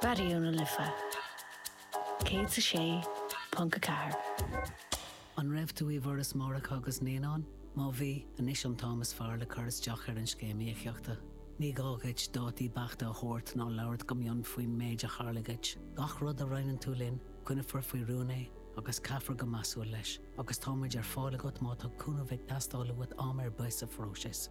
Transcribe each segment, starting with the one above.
Raidió na Life 106.4. An raibh tú i bhForas Máithreacha agus Naíonán? Má bhí, anois an t-am is fearr le cur isteach ar an Scéim Íocaíochta. Ní gá dhuit dátaí beachta a thabhairt ná labhairt go mion faoin méid a tharla dhuit. Gach rud a roinneann tú linn, coinneofar faoi rún é agus caithfear go measúil leis, agus tá muid ar fáil agat má tá cúnamh ag teastáil uait am ar bith sa phróiseas.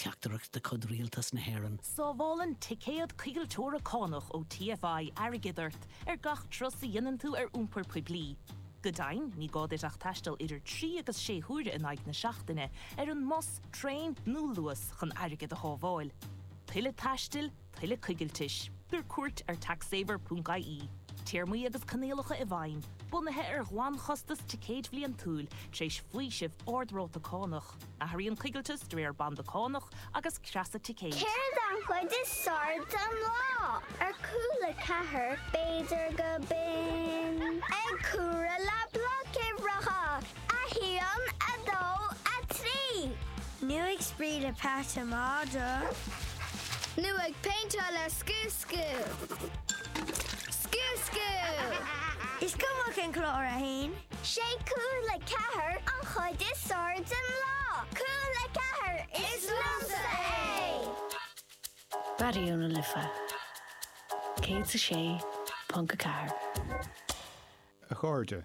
Teachtaireacht de chuid Rialtas na hÉireann. Sábhálann ticéad coigilteora cánach ó TFI airgead ort ar gach turas a dhéanann tú ar iompar poiblí. Go deimhin, ní gá duit ach taisteal idir trí agus sé huaire in aghaidh na seachtaine ar an mbus, traein nó Luas chun airgead a shábháil. Tuilleadh taistil? tuilleadh coigiltis. Tabhair cuairt ar taxsaver.ie téarmaí agus coinníollacha i bhfeidhm bunaithe ar ghlanchostas ticéid bhliantúil tar éis faoisimh ardráta cánach. Athraíonn coigilteas de réir banda cánach agus creasa ticéid. Céard an chuid is fearr den lá ar Cúla Ceathair? b'fhéidir gurb in ag comhaireamh le bloic uimhreacha. 1, 2, 3. Nó ag spraoi le Pat an Madra. Nó ag péinteáil le scúscú. Scúscú! Is cuma cén clár é féin. Sé Cúla Ceathair an chuid is fearr den lá. Cúla Ceathair is liomsa é! Raidió na Life 106.4. A chairde,